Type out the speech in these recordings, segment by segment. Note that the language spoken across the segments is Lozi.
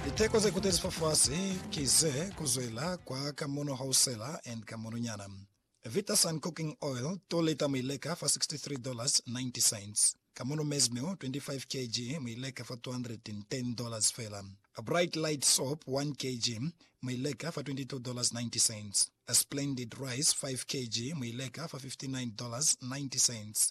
Liteko ze kutezi fa fasi ki ze ku zwela kwa ka mono hausela and ka mono nyana. Vita Sun Cooking Oil, 2 lita mu i leka fa $63.90. Ka mono Maize Meal, 25 kg, mu i leka fa $210 fela. Bright Light Soap, 1 kg, mu i leka fa $22.90. Splendid Rice, 5 kg, mu i leka fa $59.90.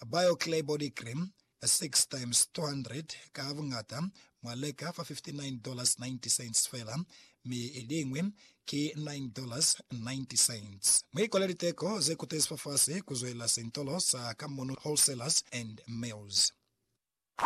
A BioClear Body Cream, 6 times 200 ka buñata, mwa leka fa $59.90 fela, mi iliñwi ki $9.90. Mu ikwale liteko ze kutezi fafasi kuzwelela sentolo sa Kamunu Wholesalers and Mills.